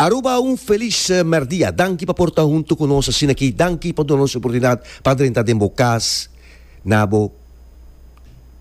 Aruba un felis merdia. Danki pa por ta huntu ku nos asin'akí. Danki pa duna nos oportunidat pa drenta den bo kas na bo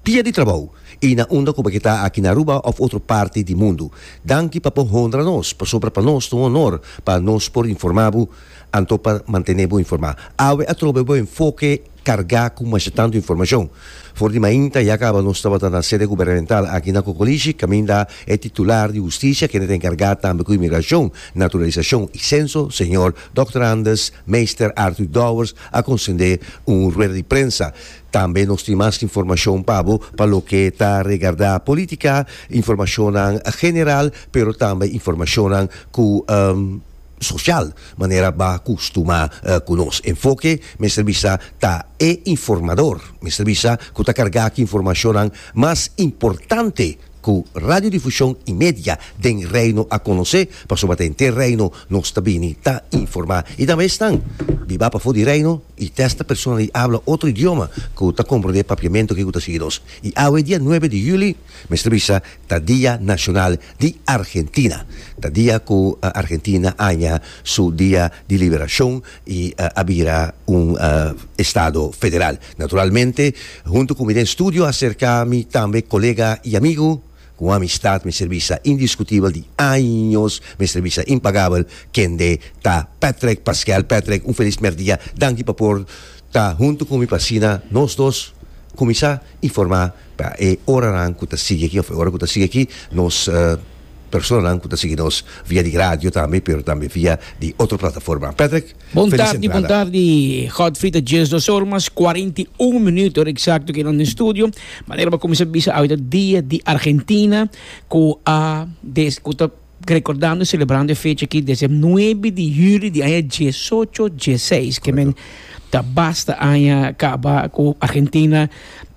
dia di trabou i na unda ku bo ke ta aki na Aruba òf otro parti di mundu. Danki pa bo honra nos, pasobra pa nos ta un onor pa nos por informá bo anto pa mantené bo informá. Awe atrobe bo enfoke. carga cu masha tanto informacion. For di mainta ya caba nos tabata na sede gubernamental aki na Cocolishi, caminda e titular di Husticia kende ta encarga tambe cu Inmigracion, Naturalisacion y Censo, señor Dòkter Anders Meester Arthur Dowers a concende un rueda di prensa. Tambe nos tin mas informacion pa bo pa loke ta regarda politica, informacionnan general pero tambe informacionnan cu. social, manera ba custuma cu nos enfoke mester bisa ta e informador, mester bisa cu ta carga cu informacionnan mas importante cu radiodifusion y media den Reino a conoce, pasobra ta henter Reino nos ta bini ta informa. Y tambe esnan biba pafo di Reino y testa persona di habla otro idioma cu ta comprende papiamento ke cu ta sigui nos. Y awe dia nuebe di juli. Mester bisa ta Dia Nashonal di Argentina. Ta dia ku Argentina a haña su Dia di Liberashon i a bira un estado federal. Naturalmente, huntu ku mi den studio aserka mi tambe kolega i amigu, ku un amistat mester bisa indiskutibel di años, mester bisa impagabel, kende ta Patrick Pasquel. Patrick, un felis mèrdia. Danki pa por ta huntu ku mi pa asina nos dos kuminsá. informá pa e oranan ku ta sigui aki òf e ora ku ta sigui aki nos personanan ku ta sigui nos via di radio tambe pero tambe via di otro plataforma. Patrick, felis entrada. Bon tardi, bon tardi Godfrey ta dies dos or mas kuarenta i un minuto eksakto aki nan den studio. Manera bo kuminsá bisa awe ta dia di Argentina ku a des ku ta. Rekordando i selebrando e fecha aki desde e nuebe di juli di aña diesocho dieseis ke men ta basta aña kaba ku Argentina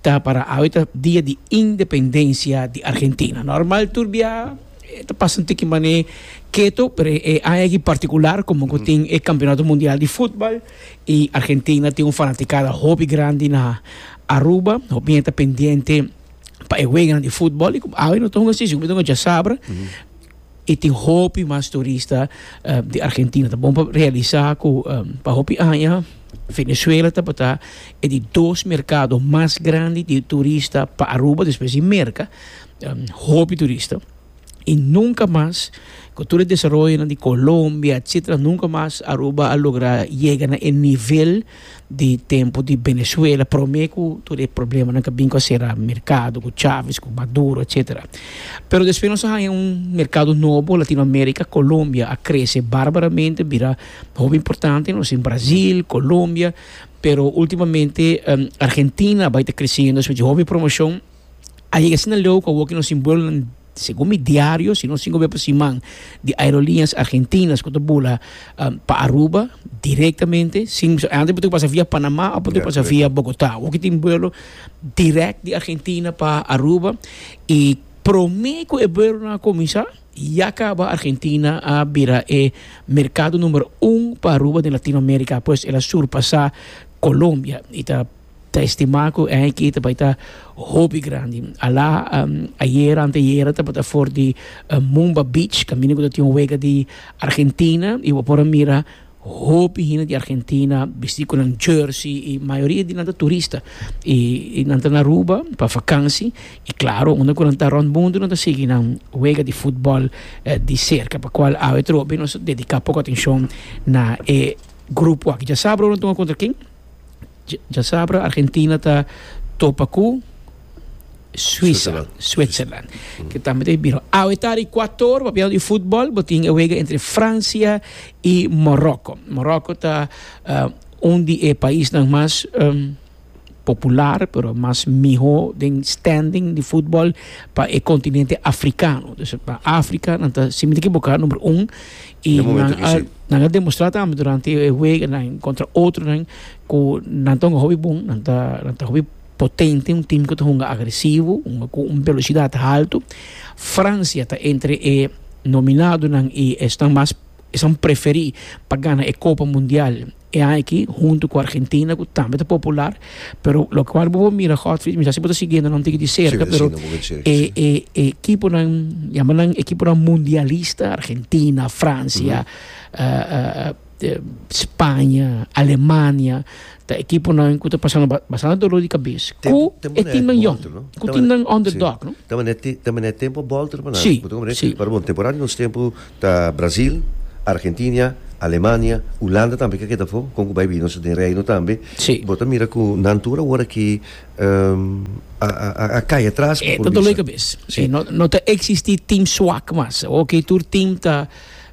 ta para awe ta dia di independensia di Argentina. Normal tur bia e ta pasa tin ki manera keto pero e aña aki partikular komo ku tin e kampionato mundial di futbal i Argentina tin un fanatikada hopi grandi na Aruba hopi hende ta pendiente. pa e weganan di futbol i ku awe no ta hunga sisi ku bo ta hunga djasabra i tin hopi mas turista di Argentina. Ta bon pa realisá ku pa hopi aña Venezuela tabata e di dos merkado mas grandi di turista pa Aruba, despues di Merka, hopi turista. y nunca mas cu tur e desaroyonan di Colombia etcetera nunca mas Aruba a logra yega na e nivel di tempo di Venezuela prome cu tur e problemanan cu a bin cu a cera mercado cu Chavez cu Maduro etcetera pero despues nos a haya un mercado nobo Latino America Colombia a crece barbaramente bira hopi importante nos tin Brasil Colombia pero ultimamente Argentina a bay ta creciendo eswat ci hopi promocion. a yega asina leu cu a woke nos simbolonan segun mi diario sino cinco bes pa siman di aerolineas argentinas cu ta bula pa Aruba directamente sin antes bo tin cu pasa via Panama of bo tin cu pasa via Bogota woke tin buelo direct di Argentina pa Aruba y prome cu e buelonan a cuminsa ya caba Argentina a bira e mercado numero un pa Aruba den Latino America pues el a surpasa Colombia y ta Ta estima cu e hiki ta bai ta hopi grandi. Ala, ayer, anteayer tabata for di Mumba Beach, camino cu ta tin un wega di Argentina, y bo por a mira hopi hende di Argentina bisti cu nan jersey, y mayoria di nan ta turista, y nan ta na Aruba pa vakansi, y claro, unda cu nan ta rond mundu nan ta sigui nan wega di futbol di cerca, pa cual awe trobe nos ta dedica poco atencion na e grupo aki. Dja sa, broer, nan tuma contra ken? Dja sabra Argentina ta topa ku Suisa, Switzerland, ke tambe ta bira. Awe ta di Ekuator, papiando di futbol, bo tin e wega entre Fransia i Moroko. Moroko ta un di e paisnan mas popular, pero mas miho den standing di futbol pa e kontinente afrikano. Afrika nan ta sin ekiboká number un Y nan a demostrá tambe durante e weganan contra otronan cu nan ta hunga hopi bon, nan ta, nan ta hopi potente, un team cu ta hunga agresivo, hunga cu un velocidad halto. Francia ta entre e nominadonan y esnan mas, esnan preferí pa gana e Copa Mundial E aki huntu ku Argentina ku tambe ta popular pero lokual bo por mira Godfrey misa si bo ta siguendo nan tiki di serka pero e e ekiponan yama nan ekiponan mundialista Argentina Francia Spaña Alemania ta ekiponan ku ta pasando bastante dolor di kabes ku e timnan yòn ku timnan underdog no ta manera tempo a bolta riba nan si si. Ta Brazil, Argentinia, Alemania, Ulanda tambe ke keda afó, kon ku bai bini nos den Reino tambe. Sí. Bo ta mira ku nan tur awor aki a kai atras, E ta dole kabes. Sí. E no no ta eksistí tim swak mas. Oke tur tim ta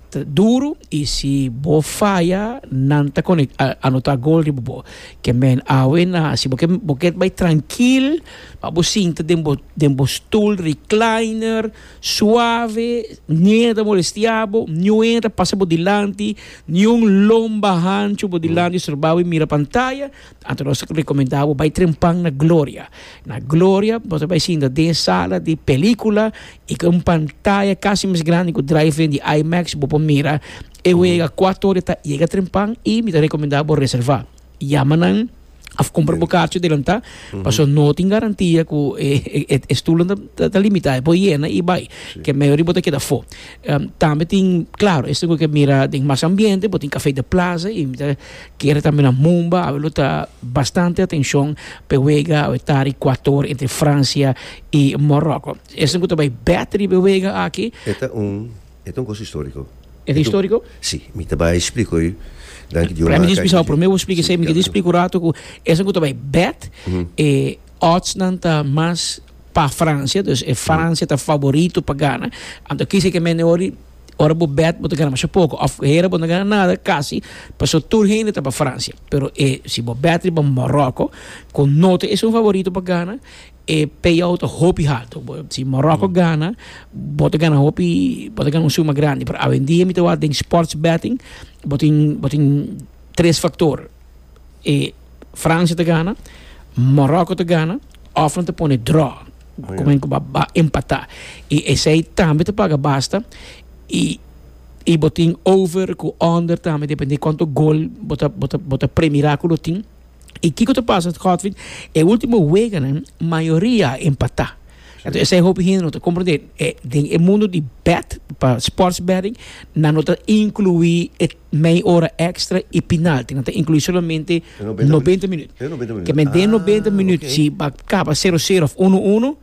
ta duru i si bo faya nan ta kone a anotá gol riba bo. Ke men awe na si bo ke bo ke bai trankil pa bo sinta den bo den bo stoel recliner. Suave, niun ta molestiabo, niue ta pasa bo dilanti, niun lomba hanchu bo dilanti estorbabo i mira pantaya, anto nos ta recomenda bo bai trempan na Gloria. Na Gloria bo ta bai sinta den sala di pelicula i cu un pantaya casi mes grandi cu drive-in di IMAX bo por mira e wega cuato ora ta yega trempan i mi ta recomenda bo reserva. Yama nan. Of compra bo kaartje delantá. Mm -hmm. Paso no tin garantia ku e, e, e, e stoelen ta, ta limitá. E por yena i bai. Sí. Ke maioria bo ta keda fo. Um, tambe tin, klaro, esto ku ke mira den mas ambiente, bo tin Café de Plaza, i mi ta kere tambe na Mumba, awe lo ta bastante atenshon pe wega awe ta Rikuator entre Fransia i Moroko. Esto ku ta bai bèt riba e wega aki. E ta un E ta un kos istoriko. E ta istoriko? Si, mi ta bai splika oe. Dan ki Dios maka e. Prende di spisao prome bo splika esei, mi ke di splika un ratu ku esaku ta bai bèt, e òdsnan ta mas pa Fransia, dus e Fransia ta faborito pa gana. Anto kisa ke mende wou di ora bo bèt bo ta gana masha poko òf hera bo no gana nada kasi, pasó tur hende ta pa Fransia. Pero e si bo bèt riba Moròko ku no ta esei un faborito pa gana. E payout ta hopi halto si Morocco gana bo ta gana hopi bo ta gana un suma grandi pero awendia mi ta wak den sports betting bo tin bo tin tres factor e Francia ta gana Morocco ta gana of nan ta pone draw komo ku ba empata i esei tambe ta paga basta i i bo tin over ku under tambe depende konto gol bo ta bo ta bo ta premirá ku lo tin. y kico ta pasa Godfrid e ultimo weganan mayoria a empata entonces esai hopi hende no ta comprende den e mundo di bet pa sports betting nan no ta inclui e mei ora extra y penalty nan ta inclui solamente noventa minut den noventa minut si a caba cero cero of uno uno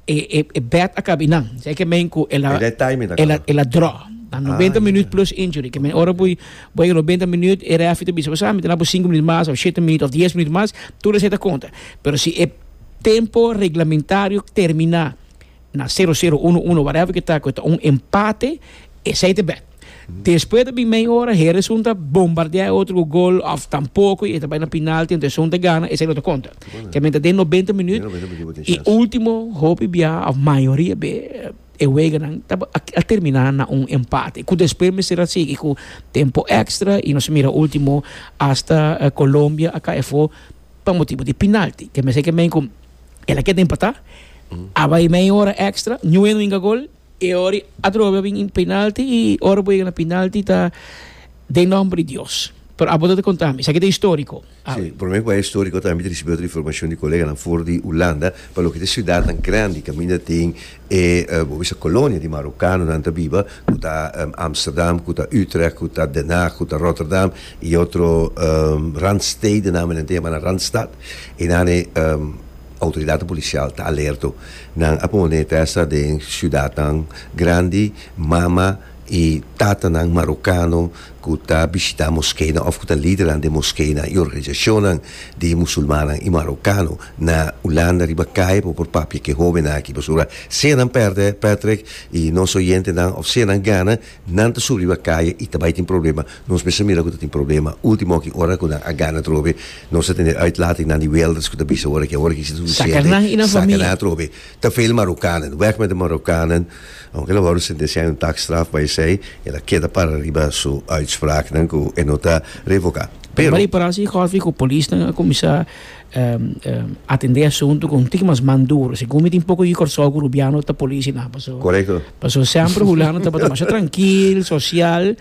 E e e bed a kabi nan. Sa e ke mean ku el a E red timing ta el a kaba. el a dra. Na noventa Ah, minüt ya. plus injury. Ke men ora bo Oké. bo yega noventa minüt e referee ta bisa bo sa mi ta dal bo sinku minüt mas of shete minüt of dies minüt mas, tur esei ta konta. Pero si e tempo reglamentario terminá na sero sero, uno uno, whatever ke ta ku e ta un empate, esei ta bed. Despues ta bin mei ora, Hera esun ta bombardea e otro ku gol òf tampoko i e ta bai na penalti anto esun ta gana, esei no ta konta. Kiamente den nobenta minüt i último hopi biaha òf mayoria be e weganan ta a terminá na un empate ku despues mester a sigui ku tempu èkstra i nos a mira último asta Colombia a kai afó pa motibu di penalti. Kieme seki a mein ku el a keda empatá, a bai mei ora èkstra, niue no inga gol. E ora i atrobe a bin in penalti i ora bo yega na penalti ta den nomber di Dios. Pero abo ta ta konta mi, esaki ta historico. Si, por mi ku a historico tambe mi ta risibi otro informacion di koleganan for di Hulanda, pa loke ta e siudatnan grandi kaminda den e bo bisa colonia di marokanonan ta biba, ku ta Amsterdam, ku ta Utrecht, ku ta Den Haag, ku ta Rotterdam i otro randstedennan, mi ta yama nan randstad, e nan e. Outoridatnan polisial ta alerto. Nan a pone tèsta den siudatnan grandi, mama i tatanan marokano ku ta bishitá moskenan òf ku ta lidernan den moskenan i organisashonnan di musulmannan i marokano na Ulanda riba kai pa por papia ku e hóbennan aki. Pasobra sea nan pèrdè, Patrick, i nos oyentenan òf sea nan gana, Nan ta subi riba caye y ta bay tin problema, nos mester mira cu ta tin problema. Ultimo aki ora cu nan a gana atrobe, nos ta tene uitlating nan di welders cu ta bisa awor aki, awor aki ci ta suficiente, saca nan atrobe. Ta veel Marokkanen, weg met de Marokkanen, aunke el a worde sentenciá en un taakstraf, bay esey, el a keda para riba su uitspraaknan cu e no ta revocá. Pero. Riba di parasha di Golf cu polisnan a cuminsá. atendé e asuntu ku un tiki mas man duru. Segun mi tin poko yu Kòrsou ku Rubiano ta polisi nan. Paso, paso sèmpre Hulano tabata demasha trankil, sosial.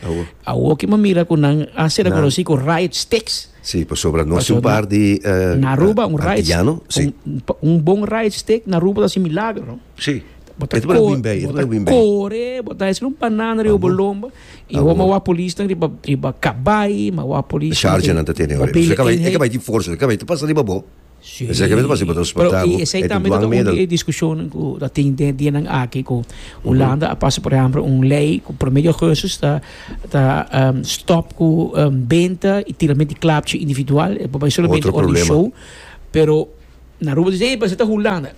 Awor ke mi a mira ku nan a ser rekonosí ku riot sticks. Si, pasobra nos tin un par di antiyano. Si. Un bon riot stick na Aruba ta hasi milagro. Si. Bo ta kore, bo ta hasi un banana riba bo lomba. I Awo. homa wa polisnan riba riba kabai, ma wa polis. Charge nan ta tene ora. Bele Ze ka bai, e ka eenheid. bai tin forsa, ze ka bai tin pasa riba bo. Sí. Ze ka bai tin pasa riba transporta Pero bo. i esei E tin tambe ta dwang un medel. di e discusionan ku ta tin den dianan aki ku Hulanda a pasa por ehempel un lei ku por medio augustus ta ta em, stop ku em, benta i tirament di klapchi individual. E por bai solamente Otro ora di problema. show, pero Na Aruba disé i base ta Hulanda.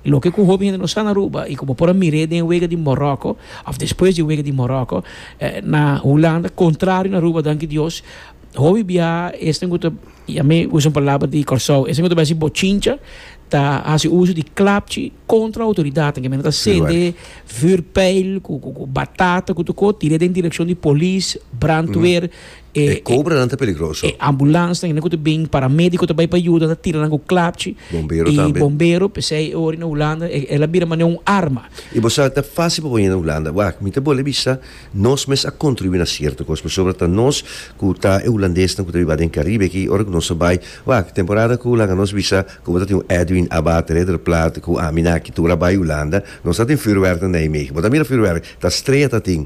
Loke ku hopi hende no sa na Aruba i ku bo por a mir'é den e wega di Moròko òf despues di e wega di Moròko, na Hulanda, kontrario na Aruba, danki Dios, hopi biaha esnan ku ta, ya mi usa un palabra di Kòrsou, esnan ku ta bai hasi bochincha ta hasi uso di klapchi kontra outoridatnan. Ki menen ta sende vùrpeil ku batata ku tukó, tir'é den direkshon di polis, brandweer, E kobranan ta peligroso. E ambulans nan, e nan ku ta bin, paramédiko ta bai pa yuda, nan ta tira nan ku klapchi. Bombero tambe. I bombero, p'esei e ora na Hulanda e, el a bira manera un arma. I bo sa, ta fásil pa bo yenda Hulanda. Wak, mi ta bo lei bisa, nos mes a kontribuí na sierto kos, pasobra ta nos ku ta e hulandesnan ku ta riba den Karibe aki, ora ku nos a bai, wak, temporada ku laga nos bisa, komo ta tin un Edwin Abbate, Rederplaat, ku ami nan aki tur a bai Hulanda, nos a tin vuurwerk na Nijmegen. Bo ta mira vuurwerk, ta strea ta tin.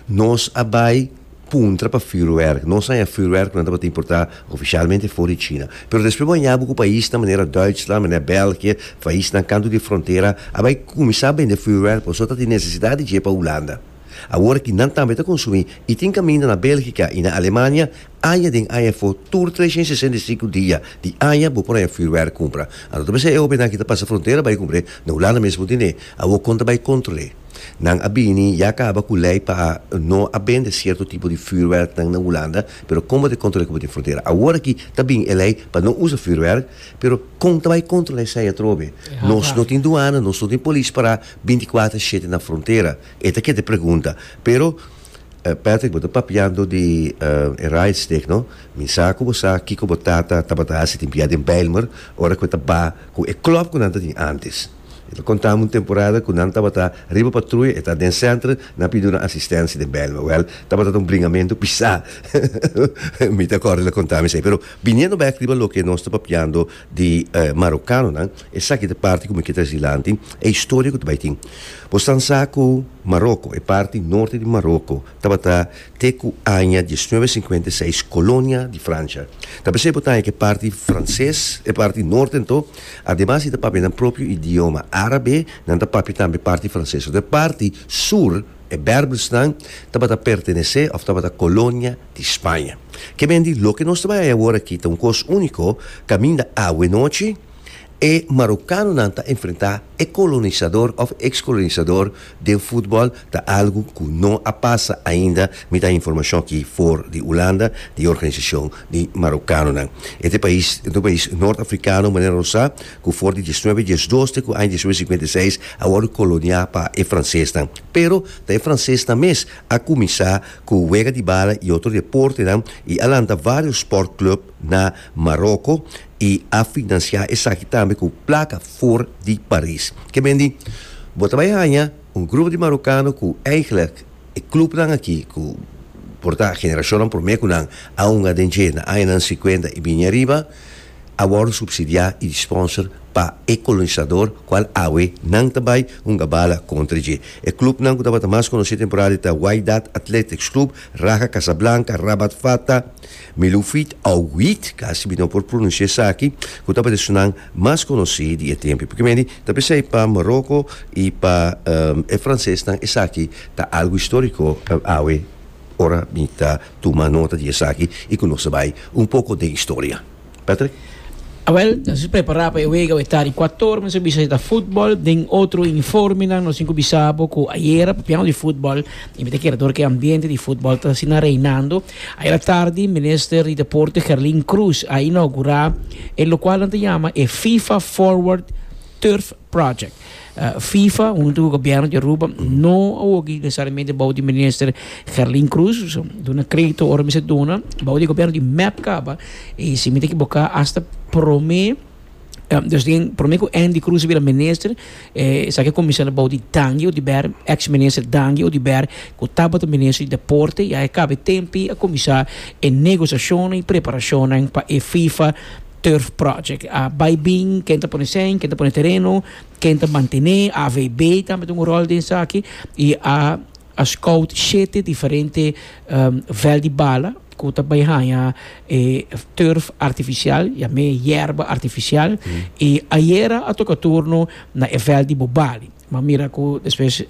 Nos a bai. Puntra pa fürwerk. Nos haña fürwerk ku nan tabata importá ofishalmente for di China. Pero despues bo haña bo ku paisnan manera Duitsland, manera Bèlgië, paisnan kantu di frontera, a bai kuminsá bende fürwerk pasobra ta tin nesesidat di dje pa Hulanda. Awor ki nan tambe ta konsumí i tin kaminda na Bèlgika i na Alemania, aña den aña for tur treshent sesenta i sinku dia di aña bo por haña fürwerk kumpra. Anto ta mester e ovenan ki ta pasa frontera bai kumpr'é na Hulanda mes bo tind'é. Awor kon ta bai kontrol'é? Nan a bini ya caba cu ley pa no a bende cierto tipo di vuurwerknan na Hulanda, pero con bo ta controla cu bo tin frontera? Awor aki ta bin e ley pa no usa vuurwerk, pero con ta bay controla esai atrobe? Nos no tin duana, nos no tin polis para binticuater a shete na frontera. E ta kende pregunta. Pero, Patrick, bo ta papiando di e Rijdsteg, no? Mi sa cu bo sa kico bo tata tabata haci tin bia den Bijlmer, ora cu e ta ba cu e club cu nan ta tin antes. E ta contami un temporada cu nan tabata riba patruya, e ta den centro, nan a pidiu nan asistencia den Bijlmer. Wel, tabata ta un bringamentu pisá. Mi ta corda el a contami esei. Pero biniendo bek riba loke nos ta papiando di Marocanonan, esaki ta e parti cu mi kier traci dilanti, e historia cu ta bay tin. Boxtan sa cu Maroco, e parti norte di Maroco, tabata Te ku aña diesnuebe sinkuenta i seis kolonia di Fransha ta p'esei bo ta haña ku e parti franses, e parti nòrten to, ademas di ta papia nan propio idioma árabe, nan ta papia tambe parti franses. Sòt e parti sur, e Bèrbèrsnan, tabata pertenesé òf tabata kolonia di Spaña. Ke men di, loke nos ta bai haña awor aki ta un kos úniko kaminda awe nochi, E Marokanonan ta enfrentá e kolonisador òf e ekskolonisador den futbòl ta algu ku no a pasa ainda, mi ta informashon aki for di Ulanda di e organisashon di Marokanonan. E ta e pais e ta un pais nort-afrikano manera nos sa ku for di diesnuebe diesdos te ku aña diesnuebe sinkuenta i seis a wòrdu koloniá pa e fransesnan. Pero ta e fransesnan mes a kuminsá ku wega di bala i otro deportenan i a lanta vários spòrtklùb na Maroko. i a finansiá esaki tambe ku plaka for di Paris. Ke men di, Bo ta bai haña un grupo di marokano ku eiglek e klupnan aki ku por ta generashonnan promé ku nan a hunga den dje na añanan sikuenta i bini ariba, a wòrdu supsidiá i di sponsor pa e kolonisador kual awe nan ta bai hunga bala kontra dje. E klupnan ku tabata mas konosí temporalmente ta Wydad Athletics Club, Raja Casablanca, Rabat Fata, Mi lo wheat ou wheat, casi mi no por pronuncia esaki, cu tabata e sunan mas conoci di e tempi. Porque medi ta pensai pa Morocco y pa e francesnan esaki ta algo historico awe ora mi ta tuma nota di esaki y cu nos ta bay un poco den historia. Patrick. Awel, nos a prepara pa e wega awe ta di Ekuator, nos a bisa si ta futbol, den otro uniformenan, nos tin ku bisa bo ku ayera papian di futbol, y mi ta kere dor ku e ambiente di futbol ta asina reinando. Ayera tardi Minister di Deporte Gerlin Cruz a inaugura e lokualnan ta yama e FIFA Forward Turf Project. Fifa huntu ku gobièrnu di Aruba no a woki nesesariamente bou di minister Gerlin Cruz. Duna kredito ora mi sa duna bou di gobièrnu di mep kaba i si mi ta ekiboká asta promé dus den promé ku Andy Cruz a bira minister esaki a kuminsá bou di Dangie Oduber ex minister Dangie Oduber ku tabata minister di deporte ya e kaba e tempu a kuminsá e negosiashonnan i preparashonnan pa e Fifa Turf project a bai bin ken ta pone sèn ken ta pone tereno ken ta mantené avb tambe ta un ròl den esaki i a a scout shete diferente vèl di bala ku ta bai haña e turf artifisial yam'é yerba artifisial i ayera a toka turno na e vèl di bobali mi a mira ku despues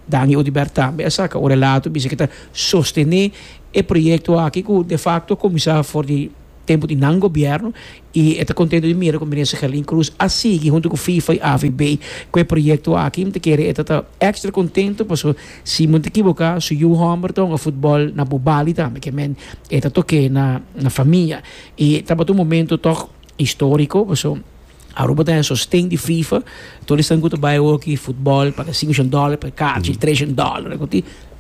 Dani Oduber tambe a saka un relato bisha ke ta sostené e proyekto aki ku defakto a kuminsá for di. Tempu di nan gobierno y e ta contento di mira cu Minister Gerlin Cruz a sigui hunto cu FIFA y AVB cu e proyecto aki. Mi ta kere e ta ta extra contento paso si mi no ta ekiboca su yu homber ta hunga futbol na Bubali tambe ke men e ta toke na na famia y tabata un momento toch historico paso Aruba ta den sosten di FIFA tur esnan cu ta bay awoki futbol paga cinco shen dollar per kachi tres shen dollar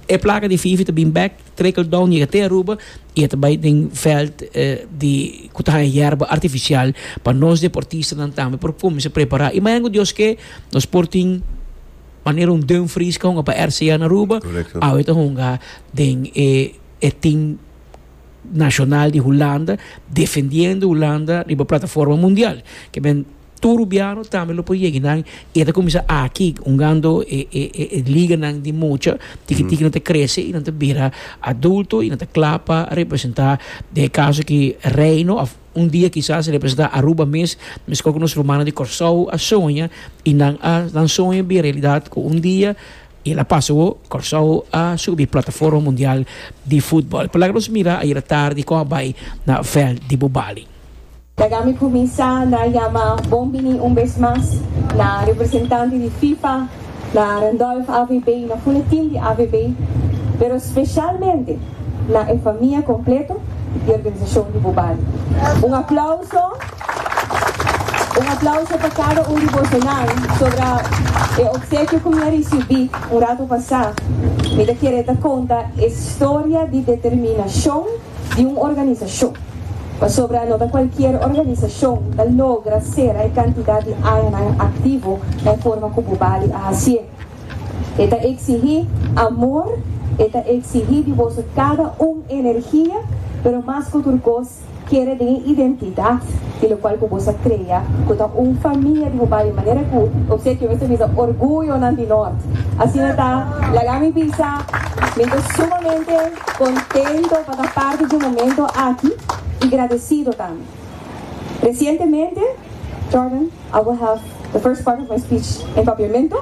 e placa di FIFA ta bin back. Trickle-down yega te Aruba y e ta bay den veld di cu ta haya yerba artificial pa nos deportistanan tambe por cuminsa prepara. Y mañana cu Dios ke nos por tin manera un Dumfries ke hunga pa RCA na Aruba, awe ta hunga den e e team nacional di Hulanda defendiendo Hulanda riba plataforma mundial. Ke men. Tur rubiano tambe lo por yegi nan y e ta cuminsa aki hungando e e e liga nan di mucha tiki tiki nan ta crece y nan ta bira adulto y nan ta cla pa representa den e caso aki Reino of un dia kisas representa Aruba mes mescua cu nos rumannan di Corsou a soña y nan a nan soño a bira realidad cu un dia y el a pasa awo Corsou a subi plataforma mundial di footbal palaga nos mira ayera tardi con a bay na veld di Bobali. Laga mi cuminsa na yama bon bini un bes mas na representante di FIFA, na Randolph AVB y na funa team di AVB, pero specialmente na e famia completo di organisacion di bo bali. Un aplauso, un aplauso pa cada un di bosonan sobra e obsequio cu mi a ricibi un rato pasa, mi ta kere ta conta e storia di determinacion, di un organisashon, pasobra no ta kualkier organisashon ta logra sera e kantidat di añanan aktivo en forma ku bo bali a hasié. E ta eksigí amor, e ta eksigí di boso kada un energia, pero mas ku tur kos kere den e identidat di lokual ku bo sa krea, ku ta un famia di bo bali, manera ku Obsequio mester bisa orguyonan di Nort. Asina ta, laga mi bisa, mi ta sumamente. Contento pa ta parte dje momento aki y gradecido tambe. Recientemente, Jordan, I will have the first part of my speech in Papiamento,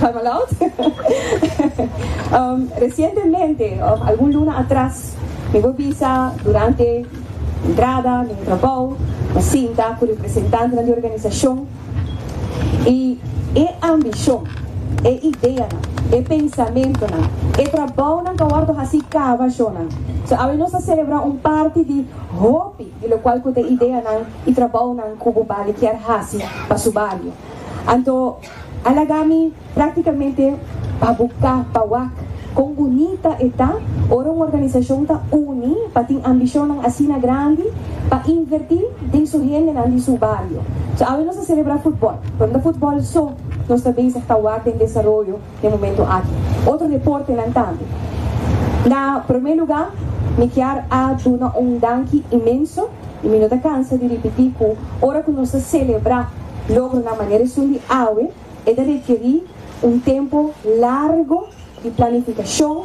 I'm allowed, recientemente of algun luna atras mi bo bisa durante entrada mi trabou mi sinta cu representantenan di organisacion, I e ambishon, e ideanan, e pensamentonan, e trabounan ku a wòrdu hasi kaba shona. So awe nos ta selebrá un parti di hopi di lokual ku ta e ideanan i trabounan ku bo bali kier hasi pa su bario. Anto a laga mi. Práktikamente pa bo ka pa wak kon bunita e ta ora un organisashon ta uni pa tin ambishonnan asina grandi pa invertí den su hendenan di su bario. So awe nos ta selebrá futbòl, pero no ta futbòl so, nos ta bezig ta wak den desaroyo den momentu aki otro deportenan tambe. Na promé lugá mi kier a duna un danki inmenso i mi no ta kansa di ripití ku ora ku nos ta selebrá logronan manera esun di awe, E ta rekerí un tempu largu di planifikashon,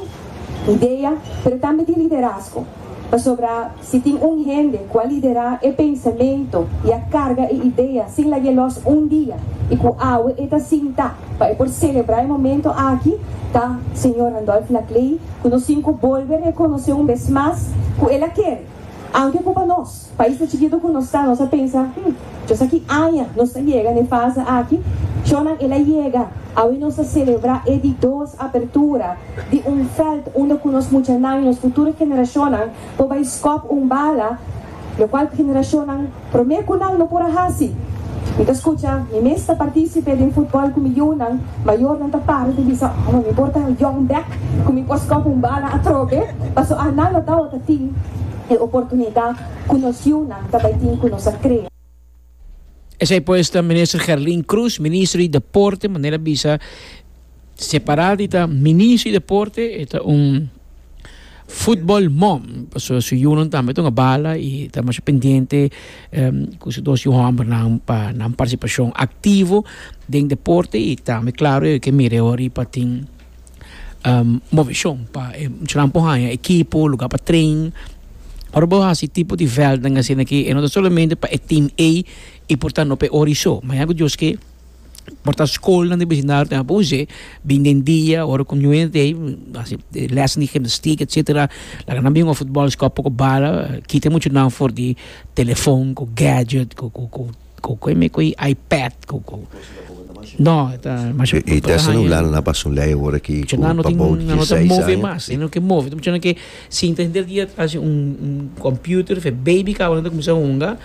idea, pero tambe di liderazgo. Pasobra si tin un hende ku a liderá e pensamentu i a karga e idea sin lag'é lòs un dia i ku awe e ta sinta pa e por selebrá e momentu aki, ta Señor Randolph Laclée, ku nos sinku bolbe rekonosé un bes mas ku el a kere. Anke ku pa nos, paisnan chikitu ku nos ta, nos a pensa, Hm, djos aki aña nos ta yega na e fase aki. Shownan el a yega, awe nos ta selebrá e di dos apertura di un veld unda ku nos muchanan i nos futuro generashonnan por bai skòp un bala, lokual generashonnan. Promé ku nan lo por a hasi. Mi ta skucha, Mi mes ta partisipe den futbòl ku mi younan mayor. Nan ta para ta bisa, Oh, mi por ta un yòng bèk ku mi por skòp un bala atrobe, paso Ana lo dau ta tin e oportunidat ku nos younan ta bai tin ku nos a kre. Esei pues ta Minister Gerlin Croes, Ministro di Deporte, manera bisa separá di ta Ministro di Deporte, e ta un. Football mom, pasobra su yunan tambe ta un bala y ta masha pendiente cu su dos yu hombernan pa nan participacion activo den deporte y tambe claro e ke mira e ora riba tin movicion pa e muchanan por haya ekipo, lugar pa train. Ora bo hasi e tipo di veldnan asina ke e no ta solamente pa e team A y por tando pa e ora y so ma ya ku dioske. por ta schoolnan di vecindario tin apo usé bin den dia ora cu nue ta hasi lessen di gymnastiek etcetera laga nan bin jugá futbol scoa poco bala kita mucho nan for di telefon cu gadget cu cu cu cu cu me cu ipad cu cu no ta masha por ta haña mucho nan no tin nan no ta move mas nan no ke move mucho nan ke Sinta henter dia ta hasi un computer fe baby kabanan ta cuminsa hunga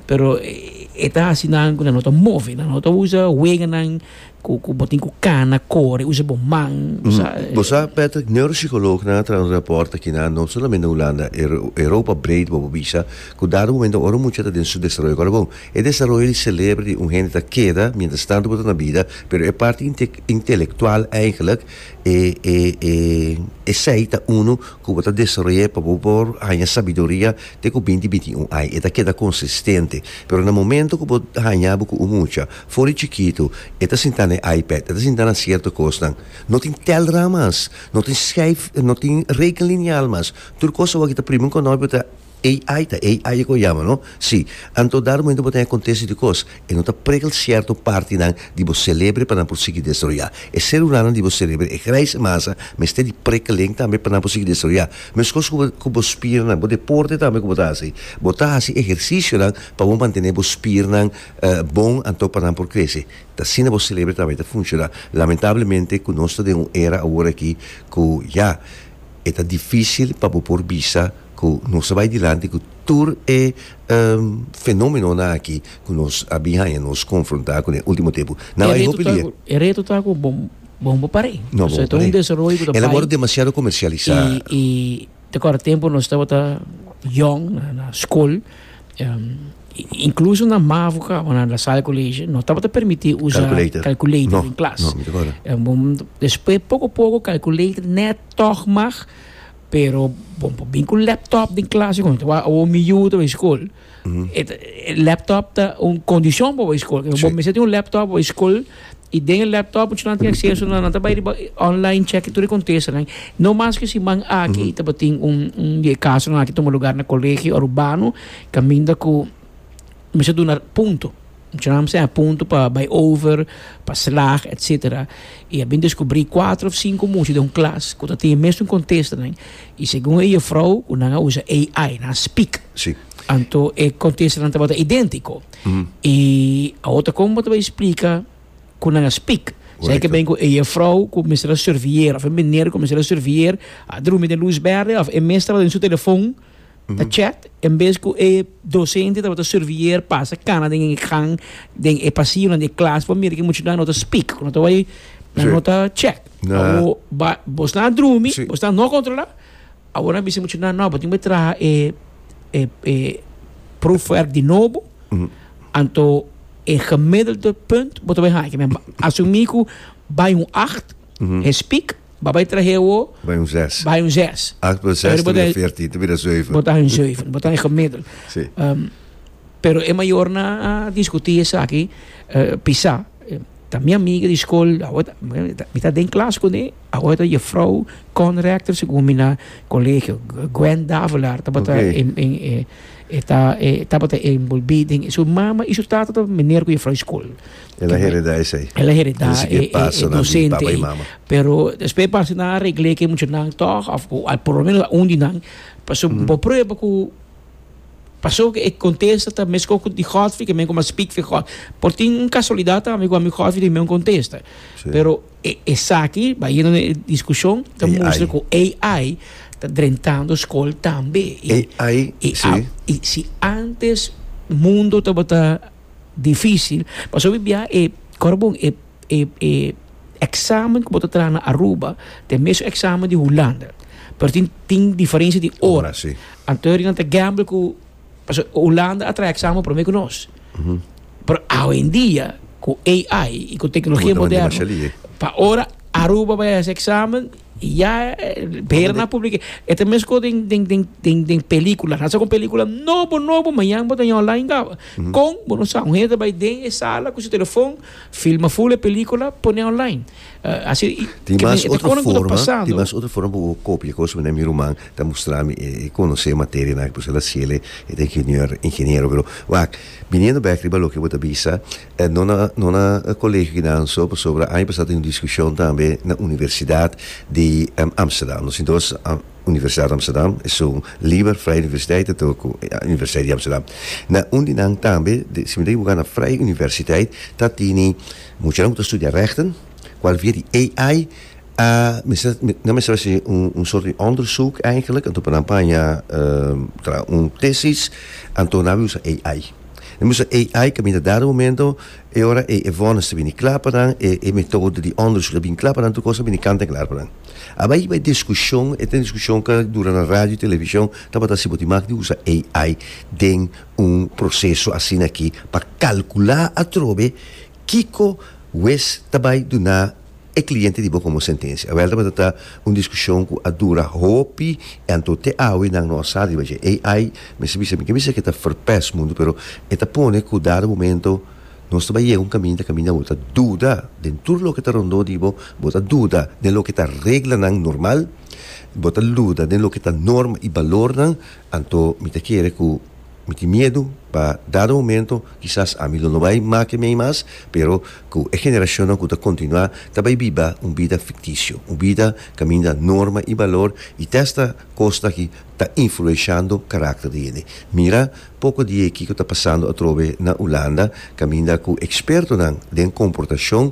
pero e ta hasi nan cu nan no ta move nan no ta usa weganan cu bo tin cu cana core usa bo man bo sa. Bo sa Patrick neuropsicoloognan a traha un rapport aki na no solamente na Hulanda Europa breed bobo bisa cu dado momento ora un mucha ta den su desaroyo ora bon e desaroyo di celebro di un hende ta keda mientras tanto bo ta na bida pero e parti intelectual eigenlijk E e e esei ta unu ku bo ta desaroy'é pa bo por haña sabiduria te ku binti binti i un ai. E ta keda konsistente. Pero na momento ku bo haña bo ku un mucha for di chikitu, e ta sinta na e iPad, e ta sinta na sierto kosnan. No tin tèlràn mas. No tin skèif, no tin rekenlinial mas. Tur kos awor aki ta primi un konòpio ta. AI ta AI e kon yama no? Si. Anto dado momento bo ta akontesi di kos, e no ta pregel sierto partinan di bo selebre pa nan por sigui destroyá. E selulanan di bo selebre, e graisha masa, mester di prekeleng tambe pa nan por sigui destroyá. Meskos ku bo ku bo spiernan, bo deporte tambe ku bo ta hasi. Bo ta hasi ehersisionan pa bo mantené bo spiernan bon anto pa nan por krese. T asina bo selebre tambe ta funshoná. Lamentablemente ku nos ta den un era awor aki ku ya. e ta difícil pa bo por bisa ku nos ta bai dilanti ku tur e fenómenonan aki ku nos a bin haña nos konfrontá ku na e último tempu. Nan bai hopi dia. E reto ta ku bo no bo par'é. No bo par'é. Pasobra e ta un desaroyo ku ta bai. El a wòrdu demasiado komersialisá. I ta kòrda tempu nos tabata yòn na skol. Incluso na mavo cabo na Lasalle College no tabata permiti usa calculator den klas. Despues poco poco calculator net toch mag, pero bon por bin cu laptop den klas y conta. Wak awor mi yu tabata school, laptop ta un condicion pa wak school. Bo mester tin un laptop pa wak school. I den e laptop cu nan tin acceso nan, nan ta bay riba online checki tur e contestanan. No mas cu siman aki i tabatin un un di e casonan aki tuma lugar na colegio Arubano caminda cu mester a duna punto. Cu nan mester a duna punto pa bay over, pa slag, etcetera. I a bin descubri cuatro of cinco mucha den un clas cu ta tin e mesun contestanan. I segun e jufrouw cu nan a usa AI, nan a speak, anto e contestanan tabata identico. Mm. I awor ta kon bo ta bai splika ku nan a spik. Sei ke ben ku e juffrouw ku mester a surveilleer of e meneer ku mester a surveilleer a drumi den lus berde of e mes tabata den su telefon ta chat en bes ku e docente tabata surveilleer pasa kana den e gang den e pasillonan di e klas por mira ku e muchanan no ta spik ku no ta bai nan no ta chat. Awor ba bo sta a drumi bo sta no kontrolá Awor a bisa mucho nan, no, bo tin bo e traha e e proefwerk di nobo, anto e gemiddelde punt bo ta bai haña. Ke men asumí ku bai un acht, hespik, bo a bai trah'é awor, Bai un zes. bai un zes. Acht plus zes ta bira veertien, ta bira zeuven. Bo ta haña un zeuven, bo ta haña gemiddel. Sí. Pero e mayornan a diskutí esaki pisá. Ta mi amiga di skol, mi ta den klas ku e, awo e ta jefrou Con Rector si ku mi na kolegio. Gwen Davelaar tabata e tabata e enbolbí den, su mama i su tata tabata miner ku jefrou di skol. El a heredá esei. El a heredá e dosente ei. Pero despues parse nan a regl'é ku e muchanan tòg òf ku por lo menos un di nan. Pasobra bo prueba ku. Pasobra e contesta ta mesco cu di Godfrey que men como a speak for God. Por tin un casualidad tambe cu ami Godfrey tin men un contesta. Sí. Pero e esaki, bayendo na e discusion, ta AI. mustra cu AI ta drentando school tambe. I- AI, i sí. a- i si antes mundo tabata dificil, pasobra bia e, ora bon, e e e examen ku bo ta traha na Aruba ta e mesun examen di Hulanda pero tin tin diferensia di ora Ora, si. anto e rinan ta gamble ku pasobra Hulanda a traha e examen prome ku nos pero awendia ku AI i ku teknologia Bo ta manda moderno demasiá lihe. pa ora Aruba bai a hasi examen ya behera nan a publike e ta mesun ku den den den den den pelikula nan sa ku un pelikula nobo nobo mañan bo ta jon online kawa kon bo no sa un hende ta bai den e sala ku su telefon. Filma ful e pelicula pone online. Asi tin mas otro forma, tin mas otro forma bo por copia cos menen mi ruman ta mustrami e conoce materia nan por eso el a cele e ta ingenieur ingeniero pero wak biniendo back riba loke bo ta bisa no na no na colegio kinan so pasobra aña pasado tin un discusion tambe na universidad di Amsterdam nos entonces. Universidad Amsterdam e su Liber Vrije Universiteit ta tur ku Universiteit di Amsterdam. Na un di nan tambe de siminda e wuga na Vrije Universiteit ta tini muchanan ku ta studia rechten kual via di AI a mester nan mester hasi un sort di onderzoek eigenlijk anto pa nan paña un tesis anto nan a usa AI. Nan usa AI kaminda dado momento E ora ei e vònes ta bini kla pa nan, e e metoda di òndersuk a bin kla pa nan, tur kos a bini kanta klar pa nan. Abai bai diskushon, e ta un diskushon ku a dura na radio, televishon, tabata si bo tin mak di usa AI den un proseso asina aki pa kalkulá atrobe kiko wes ta bai duna. e cliente di bo como sentencia. Awel tabata ta un discusion cu a dura hopi y anto te awe nan no a sa riba dje. AI, mester bisa, mi ke bisa ke ta verpest mundo pero e ta pone cu dado momento nos ta bai yega un caminda, caminda bo ta duda den tur loke ta rondo di bo, bo ta duda den loke ta reglanan normal, bo ta luda den loke ta norma y balornan, anto mi ta kere cu. Mi tin miedu pa dado momento kisas ami lo no bai make mei mas, pero ku e generashonnan ku ta kontinuá ta bai biba un bida fiktisio, un bida kaminda norma i balor i ta esta kosnan ki ta influenshando karakter di hende. Mira poko di e kiko ta pasando atrobe na Ulanda kaminda ku ekspertonan den komportashon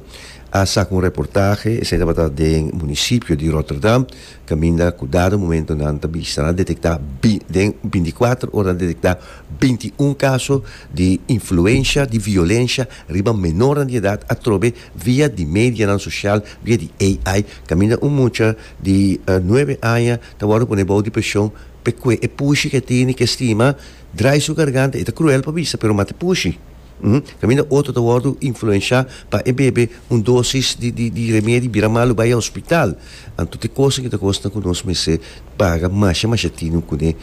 a saka un reportahe, esei tabata den munisipio di Rotterdam, Caminda cudado momento nan ta bisa nan detecta den binti cuatro ora nan detecta binti un caso di influencia di violencia riba menornan di edad atrobe via di medianan social via di AI caminda un mucha di nuebe aña ta wordo pone bao di presion p'e cue e pushi ke tini ke stima draai su garganta e ta cruel pa bisa pero mati pushi. Kaminda otro ta wòrdu influenshá pa e bebe un dosis di di di remedi bira malu bai hospital. Anto te kos aki ta kosnan ku nos mester paga masha masha tinu kuné,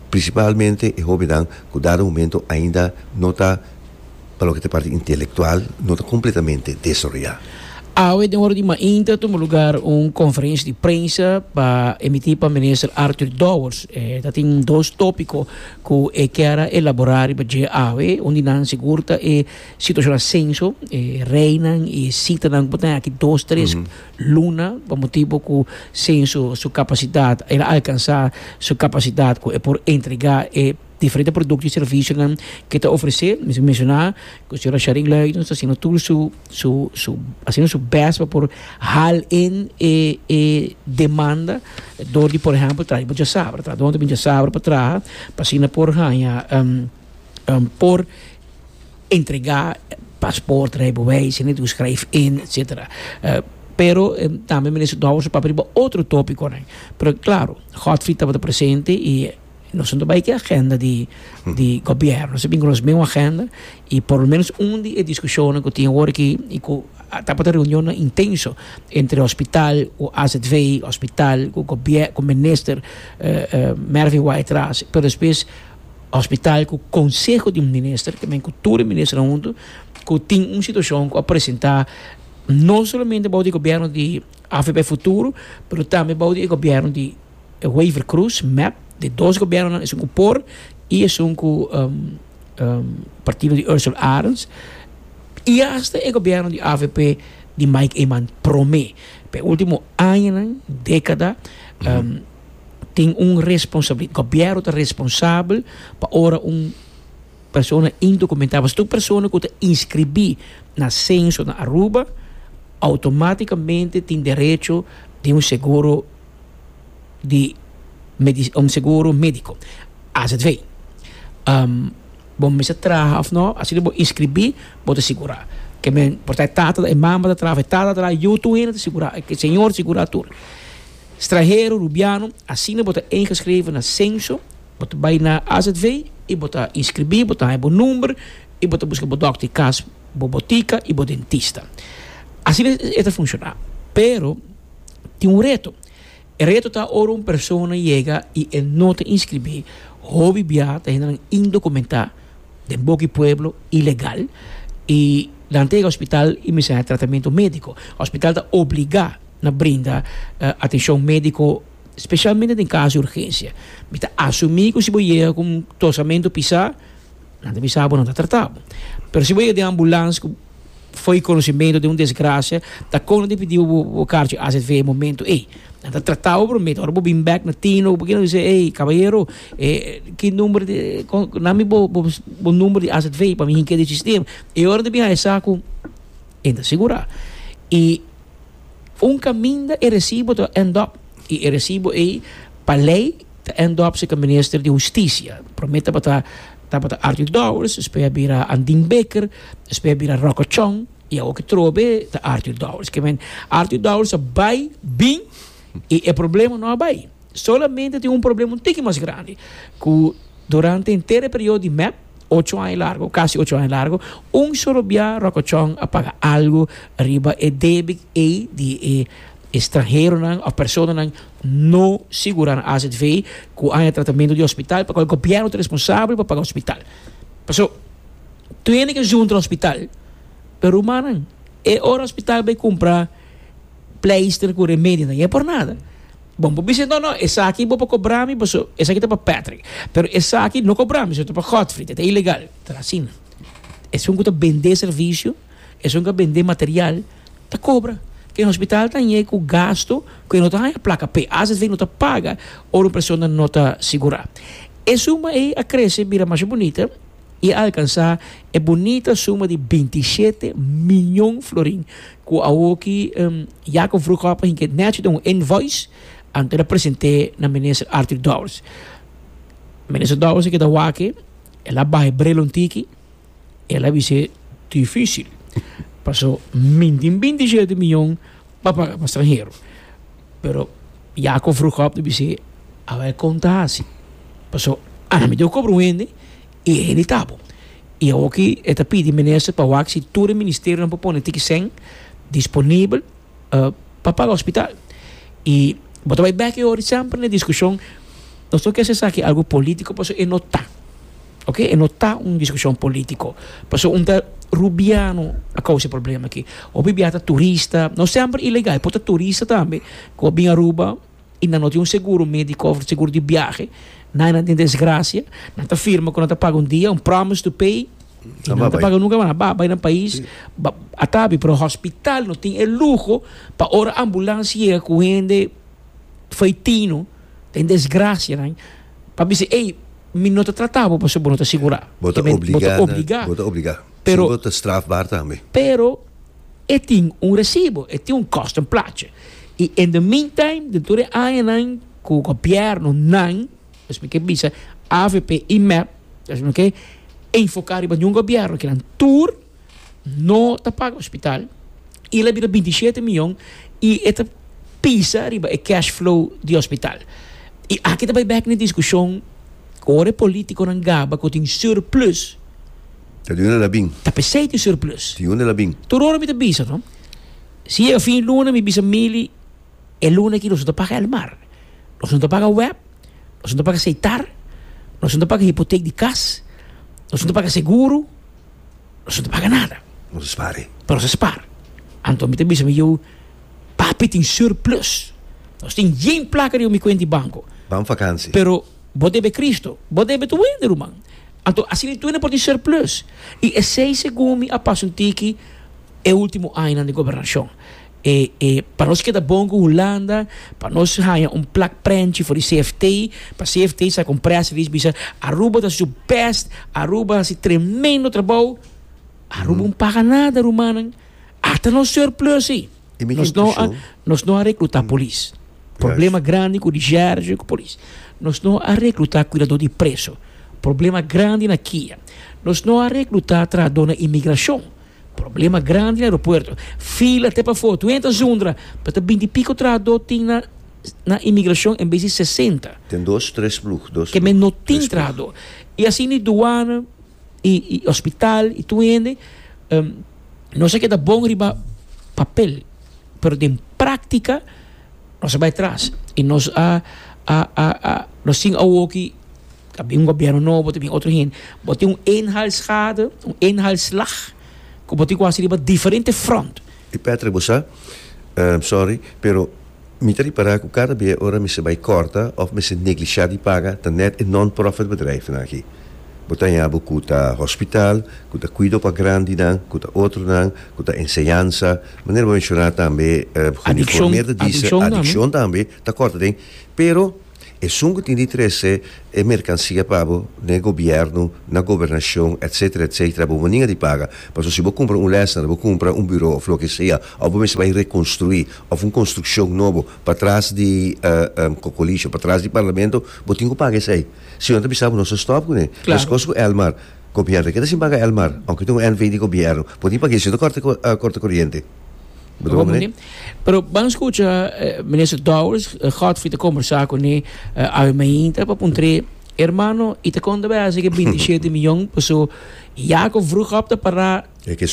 prinsipalmente e hóbennan ku dado momento ainda no ta pa loke ta parti intelektual no ta kompletamente desaroyá. Awe den ora di mainta a tuma lugar un konferensia di prensa pa emití pa Minister Arthur Dowers. E ta tin dos tópiko ku e kier a elaborá riba dje awe, un di nan sigur ta e situashon asenso, e reinan i sitanan ku por tene aki dos tres luna, pa motibu ku senso su kapasidat, el a alkansá su kapasidat ku e por entregá e diferente produkto i servisionan ku e ta ofresé. Mi ta mensioná ku señora Sharyn Luijten ta hasiendo tur su. su su haciendo su best pa por hal in e e demanda door di por ejemplo traha mucha sabra traha donde mucha sabra pa traha pa asina por haña um um por entrega paspoort rijbewijs y toer schrijf in etcetera pero tambe Minister Dowers a papia riba otro topiconan pero claro Godfrey tabata presente y Nos no ta bai ki agenda di di gobierno, nos a bin ku nos mesmo agenda i por lo menos un di e diskushonnan ku tin awor aki i ku a tabata reunionnan intenso entre hospital ku azv, hospital ku gobier ku minister Mervin Wright Ras, pero despues hospital ku konseho di minister tambe ku tur e ministernan huntu ku tin un situashon ku a presentá no solamente abou di e gobierno di avp Futuro pero tambe abou di e gobierno di E waiver cruz map di dos gobiernonan esun cu por y esun cu partido di Ursel Arends y hasta e gobierno di avp di Mike Eman prome. Pa e ultimo añanan, decada, tin un responsabilidad, gobierno ta responsabel pa ora un persona indocumentada, pasobra tur persona cu ta inscribi na censo na Aruba automaticamente tin derecho di un seguro. di un seguro medico azv bo mester traha of no asina bo inscribi bo ta sigura ke men por ta e tata ta e mama ta traha e tata ta traha yu tur hende ta sigura e señor ta sigura tur strahero rubiano asina bo ta ingeschreven na censo bo ta bay na azv y bo ta inscribi bo ta haya bo number y bo ta busca bo doctor di cas bo botica y bo dentista asina e ta funciona pero. tin un reto. E reto ta ora un persona yega i e no ta inskribí, hopi bia ta hende nan indokumentá den boki pueblo, ilegal, i nan ta yega hospital i mester haña tratamentu médiko. Hospital ta obligá na brinda atenshon médiko spesialmente den kaso di urgensia. Mi ta asumí ku si bo yega ku un tosamentu pisá. Nan ta bisa bo nan ta trata bo. Pero si bo yega den ambulans ku fo'i konosementu den un desgrasia ta kon nan tin pidi bo bo karchi azv e momentu ei. Nan ta trata bo promer, ora bo bin bèk na tino bo keda bisa ei kabayero e ki number di nan mi bo bo number di azv pa mi hink'e den sistema. E ora nan ta bin haña sa ku e ta sigurá. I un kaminda e resibo ta end up i e resibo ei pa lei. Ta en dop si ka minister di hustisia. Prome tabata tabata Arthur Dowers, despues a bira Andin Baker, despues a bira Rocco Chong y awo ki trobe ta Arthur Dowers. Ke men Arthur Dowers a bai bin y e problema no a bai. Solamente tin un problema un tiki mas grandi cu durante henter e periodo di mep ocho aña largo, casi ocho aña largo, un solo bia Rocco Chong a paga algo riba e debe ey di e stranheronan of personanan No sigura na azv ku aña tratamentu di hospital pa kua gobièrnu ta responsabel pa paga hospital. Paso, tur hende ke zuntra hospital. Pero rumannan, e ora hospital bai kumpra pleister ku remedionan ya por nada. Bon, bo bisa, no, no, esaki bo por kobra mi paso esaki ta pa Patrick. Pero esaki no kobra mi, ta pa Godfrey, ta ilegal. Asina. Esun ku ta bendé servisio, esun ku a bendé material, Ta cobra. Te hospital ta ñe cu gasto cu e no ta haya placa p'e. Asv no ta paga ora un persona no ta sigura. E suma ey a crece bira masha bunita y a alcansa e bunita suma di binti shete miyon florin cu awoki Jacob Vroeghoppe hinca e nechi den un invoice anto el a presente na Minister Arthur Dowers. Minister Dowers a keda wak e, el a baha e brelo un tiki. El a bis'é, Difísil, paso mi tin bintisiete miyon pa paga pa stranhero. Pero Yakob rug op ta bis'é, Aba e kon ta hasi, paso ami dor kobra un hende i e hende ta bo. I awor ki e ta pidi minister pa wak si tur e ministerionan por pone tiki sèn disponibel pa paga hospital. I bo ta bai bèk e ora i semper na diskushon. Nos no ke haci esaki algu polítiko, paso e no ta. ok e no ta un diskushon polítiko pasobra un ta rubiano a kousa e problema aki hopi bia ta turista no semper ilegal por ta turista tambe ku a bin Aruba i nan no tin un seguro médiko òf seguro di biahe nan i nan tin desgrasia nan ta firma ku nan ta paga un dia un promise to pay i nan ta paga nunka mas nan ba bai nan pais a ta bin pero hospital no tin e luho pa ora ambulansia yega ku hende faitino. Ta un desgracia nan pa mi si ey mi no ta trata bo pasobra bo no ta sigura. Bo ta obliga nan, bo ta obliga. Pero bo ta strafbaar tambe. Pero e tin un recibo, e tin un cost, un plaatje. Y in the meantime den tur e añanan cu gobierno nan, pues mi ke bisa avp y mep, pues mi no ke enfoca riba ningun gobierno kinan tur. no ta paga hospital y el a bira binti shete miyon y e ta pisa riba e cash flow di hospital. Y aki ta bay bek na e discusion ora e politiconan gaba cu tin surplus. Ta di un alabin. Ta pesey tin surplus. Tin un alabin. Tur ora mi ta bisa no si yega fin luna mi bisa Mili e luna aki nos no ta paga elmar, nos no ta paga web, nos no ta paga seitar, nos no ta paga hipotek di cas, nos no ta paga seguro. nos no ta paga nada. Nos a spare. Pero nos a spar. Anto mi ta bisa mi yu, Papi tin surplus. Nos tin yen plaka riba mi kuenta di banko. Ban vakansi. Pero bo debe Kristu. Bo debe tur wende, ruman. Anto asina tur no por tin surplus. I esei segun mi a pasa un tiki e ultimo añanan di gobernashon. E e pa nos keda bon ku Hulanda pa nos haña un plak prenchi for di CFT pa CFT sa kon press release bisa Aruba ta su best Aruba hasi tremendo trabou Aruba un paga nada rumannan ata nos surplus i E mi nos no a impreshon nos no a rekluta polis problema Yes. grandi ku di Sherge ku polis nos no a rekluta kuidadó di preso problema grandi na kia nos no a rekluta trahadó na imigrashon. Problema grandi na aeropuerto. Fila te pa foto. Wen ta zundra? Pa ta binti piko trahadó tin na na imigrashon en bes di sesenta. Ten dos tres plug, dos plug. Ke men no tin trahadó. I asina di duana i i hospital i tur hende nos a keda bon riba papel pero den práktika nos a bai tras i nos a a a nos tin awoki. Ta bin un gobierno nobo, ta bin otro hende. Bo tin un inhaalschade, un inhaalslag, ku bo tin ku hasi riba diferente front. E Patrick bo sa, sorry, pero mi ta repará ku kada bia ora mester bai kòrta òf mester neglishá di paga ta nèt e non-profit bedrijfnan aki. Bo ta haña bo ku ta hospital, ku ta kuido pa grandinan, ku ta otronan, ku ta enseñansa, manera bo menshoná tambe, Junifoor Meerder dise, adikshon tambe ta kòrta den, pero. Esun ku tin di trese e merkansia pa bo den e gobièrnu, na gobernashon, etsetera, etsetera, bo moninga di paga. Pasobra si bo kumpra un lèsner, bo kumpra un buro òf loke sea, òf bo mester bai rekonstruí, òf un konstrukshon nobo patras di kokolish òf patras di parlamento, bo tin ku paga esei. Si no ta bisa bo no sa stòp kuné. Meskos ku èlmar. Gobièrnu, e ke ta sin paga èlmar, ounke tin un NV di gobièrnu. Bo tin pag'é si no ta kòrta kòrta koriente. Pero ban escucha minister Dowers, Godfrey te conversa cu ne awe mainta pa puntre hermano y te conta bay haci ki binti shete miyon paso ya cu vroeg op ta para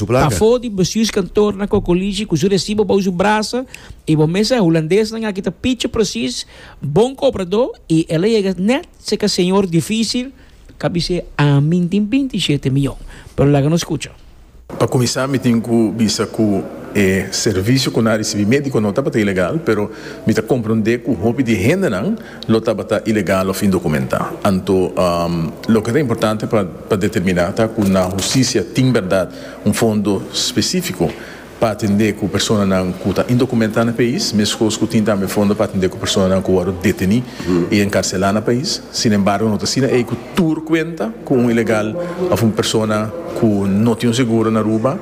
pafo di bestuurs kantoor na Cocolishi cu su recibo bao su brasa y bo mes sa hulandeesnan aki ta pichi precies bon cobrador y el a yega net seca señor dificil Ka bis'é, Ami N tin binti shete mion. Pero laga nos skucha. Pa kuminsá mi tin ku bisa ku e servisio ku nan a risibí médiko no tabata ilegal, pero mi ta komprondé ku hopi di hendenan lo tabata ilegal òf indokumentá. Anto loke ta importante pa determiná ta ku na hustisia tin bèrdat un fondo spesífiko pa atendé ku personanan ku ta indokumentá na pais, meskos ku tin tambe fondo pa atendé ku personanan ku wòrdu detení i enkarselá na pais. Sin embargo, no ta asina ei ku tur kuenta ku un ilegal òf un persona ku no tin un seguro na Aruba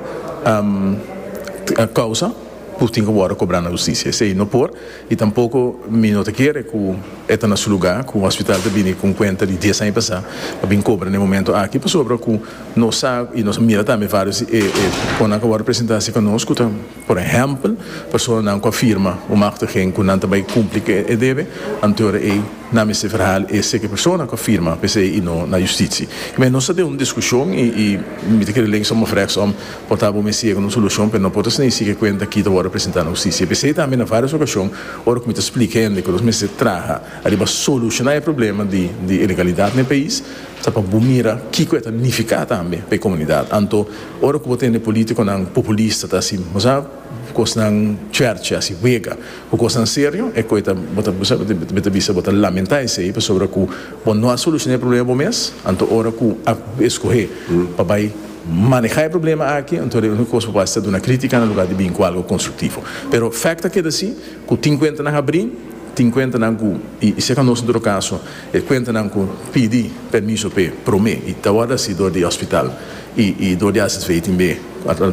a kousa, por tin ku wòrdu kobrá na hustisia. Esei no por. I tampoko mi no ta kere ku e ta na su lugá ku hospital ta bini ku un kuenta di dies aña pasá pa bin kobra na e momento aki pasobra ku nos sa i nos a mira tambe vários di e konnan ku a wòrdu presentá cerka nos ku ta por ehèmpel personanan ku a firma un machtiging ku nan ta bai kumpli ku e debe anto e ora ei nan mester verhaal e seke persona ku a firma p'esei i no na yustitie. Nos ta den un diskushon i mi ta kere lei som of rechtsom Por ta bo mester yega na un solushon, pero no por ta sneisi ke kuenta aki ta wòrdu presentá na hustisia. P'esei tambe na vários okashon, ora ku mi ta splika hende ku nos mester traha ariba solushoná e problema di di ilegalidat na e pais, ta pa bo mira kiko e ta nifiká tambe pa e komunidat. Anto, ora ku bo tende polítikonan populista ta hasi masá kosnan chèrchi, hasi wega ku kosnan serio, e kue ta bo ta bo ta bisa bo ta lamentá esei pasobra ku bo no a solushoná e problema bo mes, anto ora ku a eskohé pa bai. manehá e problema aki, anto e úniko kos ku bo fasi ta duna krítika na lugá di bin ku algu konstruktivo. Pero fèkt ta keda si ku tin kuentanan abrí, tin kuentanan ku, i seka nos en todo kaso, e kuentanan ku pidi pèrmiso p'e promé i ta wòrdu hasi dor di ospital i i dor di AZV tin be,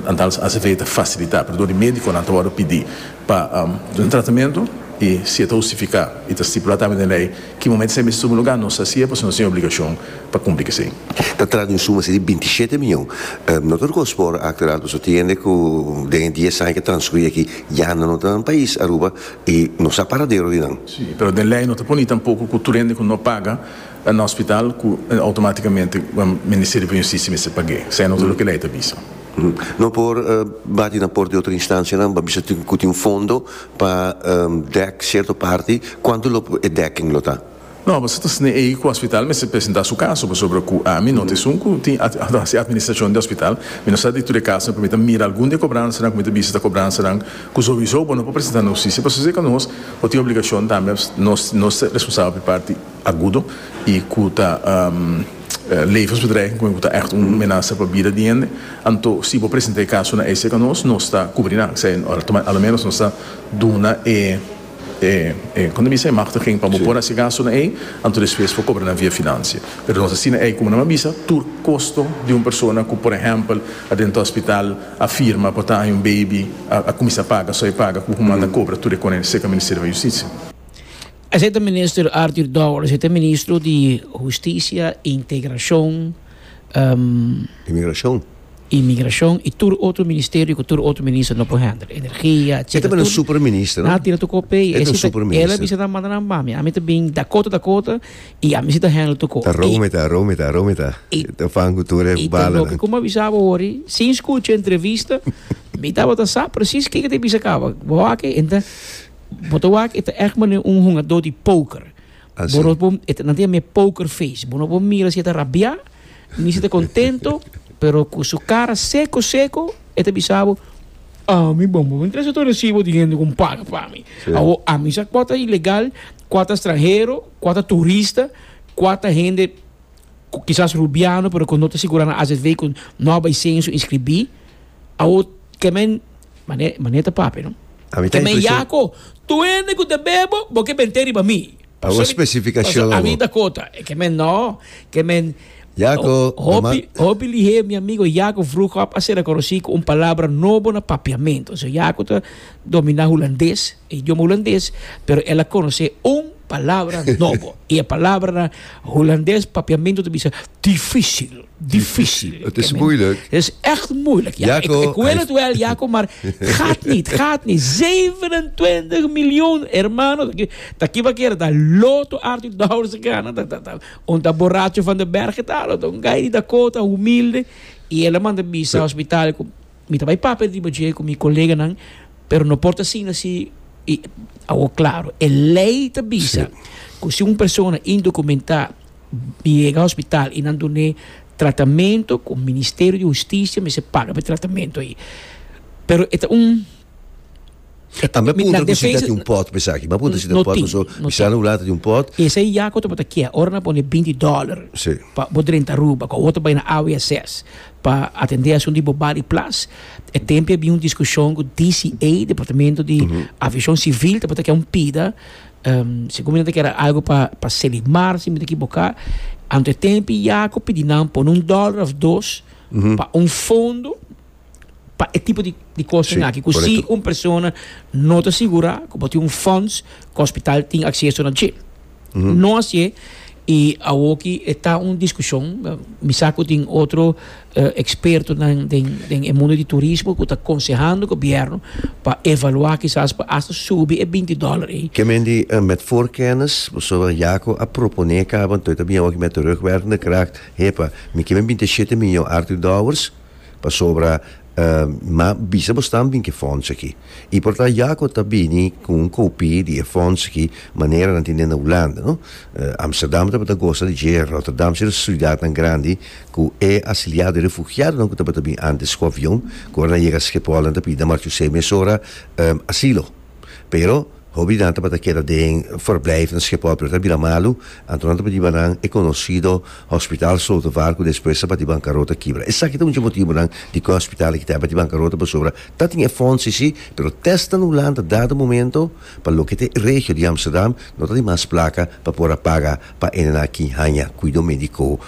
antal AZV ta fasilitá, pero dor di médikonan ta wòrdu pidi pa un tratamentu i si e ta hustifiká i ta stipulá tambe den lei, Ki momento esei mestum lugá nos haci'e pasobra nos tin e obligacion pa cumpli cu esei. Ta tras di un suma así di bintisiete mion. No ta ricos por acto de alto sotiende cu den e dies aña cu a transcuri aki yanda no ta nan pais, Aruba, y nos sa paradero di nan. Sí, pero den ley no ta poni tampoco cu tur hende cu no paga na hospital cu automaticamente Ministerio pa Justicia mester pag'e. Esei no ta loke ley ta bisa. No por bati na por di otro instancianan pa bisa cu tin fondo Pa dek cierto parti, cuanto lo e dekking lo ta? No, boso ta sne ei cu hospital mester presenta su caso, pasobra cu ami no ta esun cu tin hasi administracion di hospital. Mi no sa di tur e casonan, pero mi ta mira algun di e cobransanan cu mi ta bisa ta cobransanan cu sowiso bo no por presenta na hustisia. Pasobra si ta nos, bo tin obligacion tambe, nos, nos ta responsabel pa e parti. agudo y cu ta levensbedreiging, cu cu ta echt un menasa pa bida di hende, anto si bo presenta e caso na ACECA nos, nos ta cubri nan, sea, a lo menos nos ta duna e e e con ta bisa e machtiging pa bo por haci gasto na ey, anto despues por cobra nan via financia. Pero nos asina ey, como nan a bisa, tur costo di un persona cu por ehempel a drenta hospital, a firma pa ta hay un baby, a cuminsa paga, so a paga, cu cu manda cobra tur e con e cerca Ministerio van Justicia. Esei ta Minister Arthur Dower, esei ta Ministro di Husticia, Integracion, Imigracion. Imigracion y tur otro Ministerio cu tur otro Minister no por handle, Energia, etcetera. E ta bini Super Minister, no? Nan a tira tur cor pei. E ta un Super Minister. Ela bisa nan manda nan bami. Ami ta bin Dakota, Dakota y ami si ta handle tur cor. Ta Rome ta, Rome ta, Rome ta. E ta fan cu tur e balanan. Y ta loke, como a bisa bo awor, sin scucha entrevista, mi tabata sa precies kiko ta bisa caba. Bo aki, enta. Bo ta wak e ta echt manera un hungadó di póker. Bo no por, e ta, nan ta yama e póker face. Bo no por mira si e ta rabiá, ni si e ta kontento, pero ku su kara seko seko e ta bisa bo, Ami bon, bo interesa tur resibo di hende ku paga pa mi. Awo, ami sa kua ta ilegal, kua ta stranhero, kua ta turista, kua ta hende. cu kisas rubiano pero cu no ta sigura na azv cu no a bay censo inscribi awo ke men mane mane ta pape no A mi ta ke men impresion yaco tur hende cu ta bebo bo ke bente riba mi Awo pasobra specificacion pasobra a mi awo. ta cota e ke men no ke men Yaco, ho- hopi Normaal hopi lihe mi amigo Jaco Vroegop a ser reconoci cu un palabra nobo na papiamento so Jaco ta domina Hulandes. Idioma hulandes, pero el a conoce un palabra nobo. y e palabra na hulandes, papiamento ta bisa dificil, dificil. Het is moeilijk. Het is echt moeilijk. Ja, ik, ik wil het wel, Jaco, maar gaat niet, gaat niet. 27 miljoen, hermano. Taki wat keren, dat loto Arthur Dowers gana. Dat, dat, dat. Onta borracho van de berg, dat, dat. Een guy die Dakota, humilde. Y el a manda bisa hospitaal. Mi ta bai papia riba dje ku mi koleganan, pero no por ta asina si i awor klaro. E lei ta bisa ku si un persona indokumentá yega hospital i nan dun'é tratamentu ku Ministerio di Hustisia mester paga pa e tratamentu ei. Pero e ta un. A mi a puntra ku si ta tin un pòt esaki. Mi a puntra si ta tin un pòt paso mi sa nan hulanta tin un pòt. Esei ya ku ta bota kiè ora nan pone binti dòler pa bo drenta Aruba ku otro bai na AWSS pa atendé asuntu di bo bali plas. E tempu a bin un diskushon ku DCA, Departamento di Aviashon Sivil, tabata ke un pida. Segun mi nan ta kere algu pa Selimar si mi ta ekiboká. Anto e tempu ya ku pidi nan pone un dòler òf dos pa un fondo. pa e tipo di kosten aki ku si un persona no ta sigurá ku bo tin un fonds ku hospital tin akseso na dje. No así i awor ki e ta un diskushon, mi sa ku tin otro ekspertonan den e mundu di turismo ku ta konsehando gobièrnu pa evaluá kisas pa asta subi e binti dòler ei. Ke men di met voorkennis, pasobra ya ku a proponé kaba, ntoe ta bin awor ki mi a terugwerkende kracht, epa, mi ke men binti e shete mion arti dòwers, pasobra ma bisa bo stamp den ke fonts aki y por ta yaco ta bini cu un copi di e fonts aki manera nan tin den na Hulanda no Amsterdam tabata gosa di dje Rotterdam ser otro ciudadnan grandi cu e asiliado e refugiadonan cu tabata bin antes cu avion cu ora nan yega Schiphol nan ta pidi na Marc Ucé mesora asilo. Pero hobinan tabata keda den verblijf na Schiphol pero ta bira malu, anto nan ta batiba nan e conocido Hospital Slotervaart cu despues a bati bancarota kibra. Esaki ta un dje motibonan di cu e hospital aki ta a bati bancarota pasobra ta tin e fonds si si pero testnan nu lanta dado momento pa loke ta e regio di Amsterdam no ta tin mas placa pa por a paga pa ene nan aki hanja cuido medico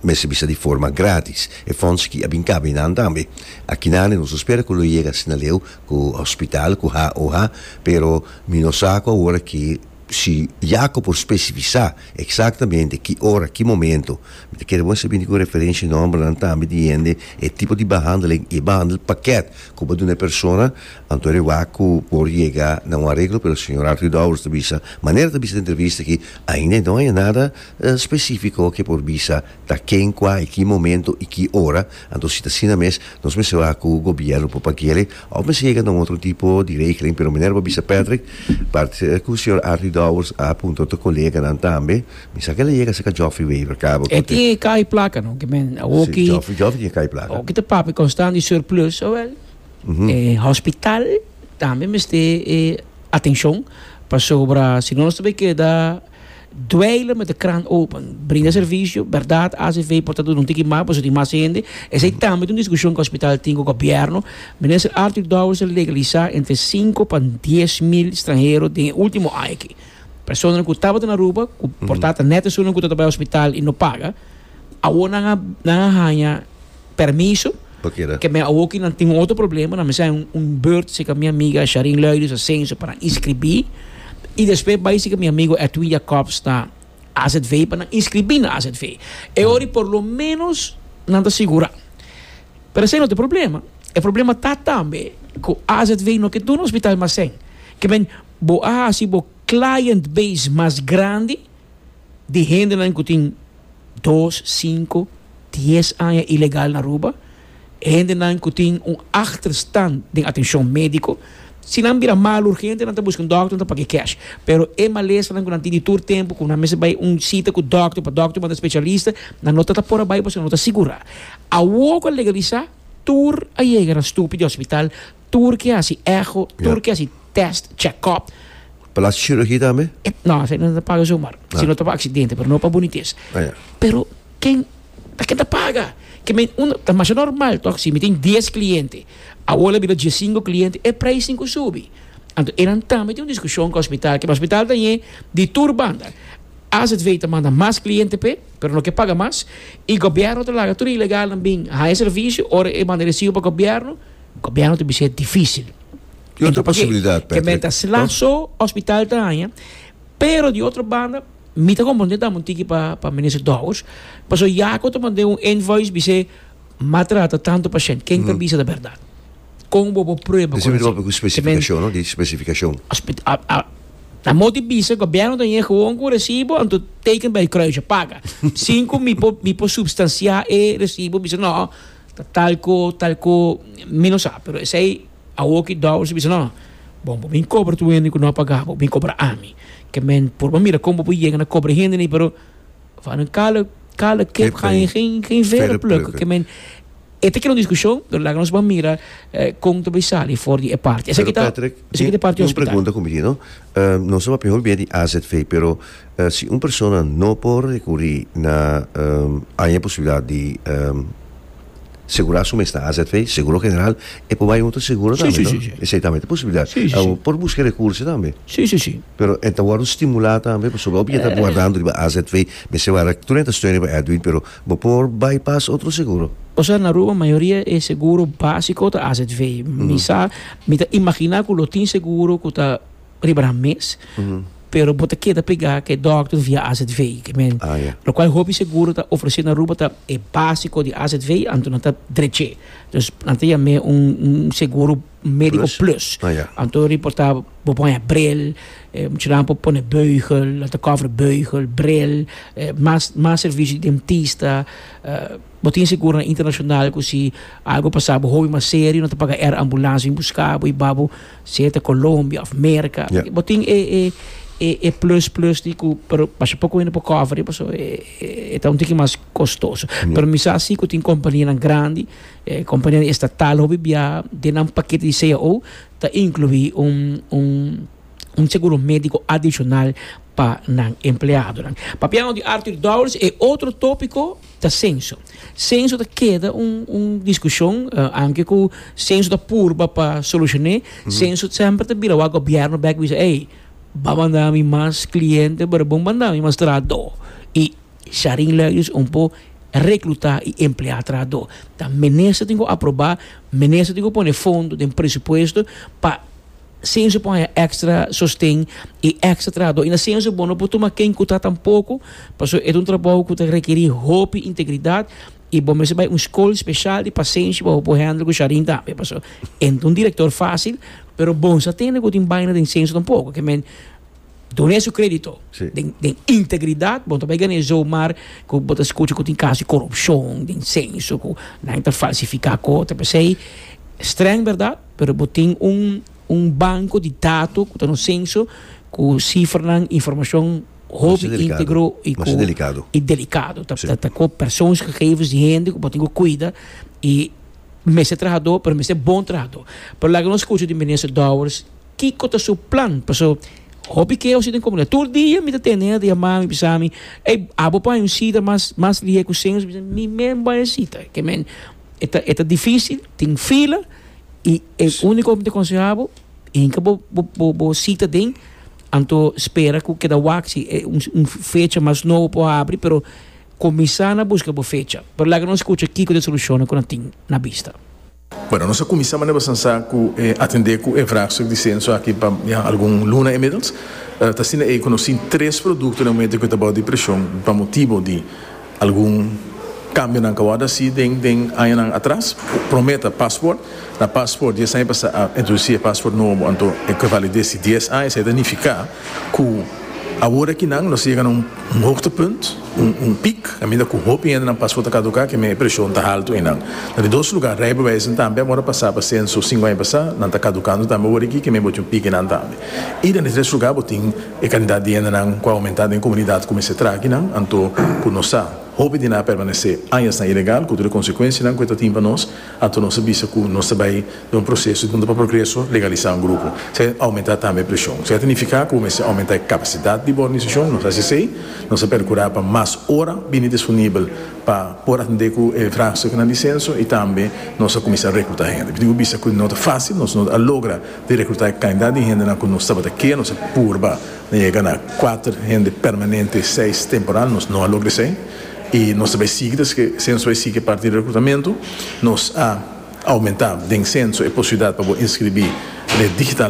mester bisa di forma gratis. E fonds aki a bin cabe nan tambe. Aki nan nos ta spera cu lo yega asina leu ku hospital ku ha o ha pero mi no sa ku awor aki si Jaco por specifisa exactamente ki ora ki momento mi ta kere bo mester bini ku referenshi nombernan tambe di hende e tipo di behandeling e behandel paket ku bo duna e persona anto re wak ku por yega na un areglo pero señor Arthur Dowers ta bisa manera ta bisa den entrevista aki ainda no haya nada specifico ke por bisa ta ken kua i ki momento i ki ora Anto si ta asina mes nos mester wak ku gobièrnu por pagu'e òf mester yega na un otro tipo di regeling pero manera bo bisa Patrick part ku señor Artie Dowers a punta otro koleganan tambe mi sa ke lo yega saka Joffrey Wever cabo E tin e kai plaka no ke men awo ki si Joffrey Joffrey tin e kai plaka awo ki ta papia konstant di surplus awel e hospital tambe mester e atenshon pasobra si no nos ta bay keda. Dweiler met de krant open, brinda servicio, berdad acv por ta duna un tiki mas pasobra tin mas hende. Esei tambe ta un discusion cu hospital tin cu gobierno. Minister Arthur Dowers ta legalisa entre sinku pa dies mil stranhero den e ultimo aña aki. Personanan cu tabata na Aruba, cu por tata net esunnan cu ta bai hospital y no paga, awor nan a haña. permiso. Pa keda. Ke men awoki nan tin un otro problema, nan mester hay un, un beurt sika mi amiga Sharin Luiders Asencio pa nan inscribí. I despues bai sika mi amigo Edwin Jacobs na AZV pa nan inscribí na AZV. E ori por lo menos nan ta sigurá. Pero esei no ta e problema. E problema ta tambe ku AZV no ke duna ospital mas almasen. Ke men, bo a hasi bo client base mas grandi, di hendenan ku tin dos, sinku, dies aña ilegal na Aruba, hendenan ku tin un ahterstan den atenshon médiko. Si nan bira mal urgente nan ta buska un dòkter, nan ta pag'é kèsh. Pero e malesanan ku nan tin di tur tempu ku nan mester bai un sita ku dòkter pa dòkter manda spesialista, nan no ta ta por a bai pasobra nan no ta sigurá. Awor ku a legalisá, tur a yega na stupi di hospital, tur ke hasi echo, tur ke hasi tèst, chèkòp. Pa lo haci cirugía tambe? No, esei no ta paga zomaar. Ah. Sino ta pa accidente, pero no pa bonites. Ah, ya. Pero ken ta ken ta paga? Ke men un ta masha normal tok si mi tin dies cliente, awo la bira diesinco cliente, e prijs tin ku subi. Anto eran tambe tin un diskushon ku hospital, ke hospital ta ñe di tur banda. AZV ta manda mas cliente p'e, pero no ke paga mas, i gobierno ta laga tur e ilegalnan bin haña servisio, ora e manda e resibo pa gobierno, gobierno ta bisa e difícil. Di otro posibilidad Patrick. Ke men ta sla so hospital ta haña pero di otro banda mi ta comprende tambe un tiki pa pa Minister Dowers paso Jaco ta mand'é un invoice bis'é m'a trata tanto pashent ken ta bisa ta berdad kon bobo prueba kon así ke men Specificacion no di specificacion. Amo di bisa gobierno ta yega gewoon ku un recibo anto teken bij kruisje paga sin ku mi por mi por substancia e recibo bisa no ta talko talko mi no sa pero esei Awor ki Doris a bisa, No, bo no bin kobra tur hende ku no a pagá bo, bo bin kobra ami. Ke men por bo mira kon bo por yega na kobra e hende ni, pero fanan kala kala kep haña geen vere pluk. Ke men, e ta kere un diskushon, pero laga nos ban mira kon ta bai sali for di e parti. Esaki ta, esaki ta e parti hospital. Pero Patrick, un pregunta ku mi tin, no. Nos tabata mihó bia di azv, pero si un persona no por rekurí na aña posibilidat di. Segura su mes na azv, seguro general, e por bai un otro seguro tambe no? Si, si, si, si. Esei tambe ta posibilidad. Si, si, si. Awor, por busca recurso tambe. Si, si, si. Pero e ta wòrdu stimulá tambe pasobra hopi e ta guardando riba azv, mester wara tur e ta steun riba Edwin, pero bo por bai pas otro seguro. Osea, na Aruba mayoria e seguro básico ta azv. Mi sa, mi ta imaginá ku lo tin seguro ku ta. riba nan mes, pero bo ta keda pregá ku e dòkter via azv. Ke men, lokual hopi seguro ta ofresé na Aruba ta e básiko di azv, anto nan ta drech'é. Dus nan ta yam'é un seguro médiko plus. Anto reportá bo por haña brel, muchanan por pone beugel, nan ta kòver beugel, brel, mas mas servisio di dentista. Bo tin seguro internashonal ku si algu pasá bo hopi mas serio nan ta paga èr ambulansia bin buskabo i babo Sea ta Colombia of Merca. Yeah. Bo tin e, e, e, e plus plus di ku, pero pasha poco hende por cover, paso e, e, e ta un tiki mas costoso. Yeah. Pero mi sa si ku tin compañíanan grandi, eh, compañíanan estatal hopi bia, den nan pakete di CAO ta incluí un, un, un seguro médico adicional pa nan empleadonan. Papiando di Arthur Dowers, e otro tópiko, ta senso. Senso ta keda un un diskushon, anke ku senso ta purba pa solushoné, senso semper ta bira wak gobièrnu bèk bisa, ei, ba manda mi mas kliente pero bo manda mi mas trahadó. I Sharin Lelius un po reklutá i empleá trahadó. Ta minister tin ku aprobá, minister tin ku pone fondo den presupuesto pa. Sin su por haña extra sosten y extra trahador y na sin su por no por tuma ken cu ta tampoco, pasobra e ta un trabou cu ta rekeri hopi integridad y bo mester bay un school special di pasenshi pa bo por handle cu Shareen tambe, pasobra e no ta un director facil pero bo no sa tende cu tin baynan den censo tampoco, ke men. Done su crédito den den integridad bo ta bai gané zomaar cu bo ta scucha cu tin caso di corrupcion den censo cu nan ta falsifica co ta pesey streng verdad pero bo tin un un banco di dato cu ta nos censo cu cifranan informacion hopi integro y cu y delicado ta ta ta cu persoons gegevens di hende cu bo tin cu cuida y mester trahador pero mester bon trahador pero laga nos scucha di minister Dowers. kiko ta su plan paso hopi keo si den komunidat tur dia mi ta tene ata yama mi bisami ey a bo paña un sita mas mas lihé ku señor mi bisa mi men bai e sita ke men e ta e ta dificil tin fila y e uniko mi ta aconseha bo hinka bo bo bo sita den anto spera ku keda wak si e un fecha mas nobo por habri pero kumisa na buska bo fecha pero laga nos kucha kiko ta e solushonnan ku nan tin na bista. Bueno, nos a kuminsá manera bastan sa ku e atendé ku e vraagstuk di senso aki pa ya algun luna inmiddels. Ta asina ei ku nos tin tres produkto den momentu ku e ta bou di preshon pa motibu di algun kambionan ku a wòrdu hasi den den añanan atras. Promé ta Passport. Na Passport dies aña pasá a introdusí e Passport nobo, anto e ku e valides di dies aña esei ta nifiká. Cu awor aki nan nos a yega na un hoogtepunt, un piek, caminda cu hopi hendenan paspoort ta caduca, kende e presion ta halto einan. Na di dos lugar, rijbewijzen tambe amor a pasa pa censo cinco aña pasa, nan ta caducando tambe awor aki, kende boti un piek einan tambe. Y den e tres lugar bo tin e cantidad di hendenan cu a aumenta den e comunidad cu mester traha aki nan, anto cu nos sa hopi di nan a permanece añasnan ilegal, cu tur e consecuencianan cu e ta tin pa nos, Anto nos a bisa cu nos ta bay den un proceso di punta pa progreso legaliza un grupo. Esey a aumenta tambe e presion. Esey ta nifica cu mester aumenta e capacidad di bo organisacion. Nos a haci esey. Nos a percura pa mas ora bini disponibel pa por atende cu e vraagstukken di censo y tambe nos a cuminsa recruta hende. Tin cu bisa cu no ta facil. Nos no a logra di recruta e cantidad di hendenan cu nos tabata kere. Nos a purba na yega na cuater hende permanente y seis temporal. Nos no a logra esey. E nos ta bai sigui ta haci censo bai sigui parti di reclutamentu. Nos a aumenta den censo e posibilidad pa bo inscribi digitalmente.